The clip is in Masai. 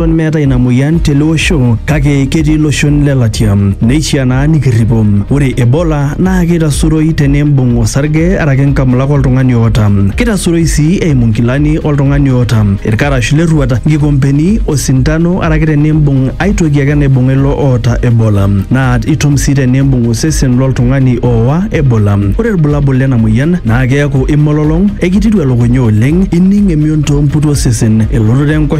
Eton meetae ina moyian tele osho kake ketii iloshon le latia neishiaa naa nikirripo. Ore Ebola naa keitasuroi teneimbung osarge araki nkamulak oltung'ani oota. Keitasuroi sii eimu nkilani oltung'ani oota, ilkarash le rruat, nkikompeni, osintano araki teneimbung ai toki ake naibung'a ilo oota Ebola. Naa itum sii teneimbung osesen lo ltung'ani oowa Ebola. Ore ilbulabul lena moyian naa keaku imololong, eikitiru elukunya oleng, ining emion too mputi osesen, elototo enkoshoke,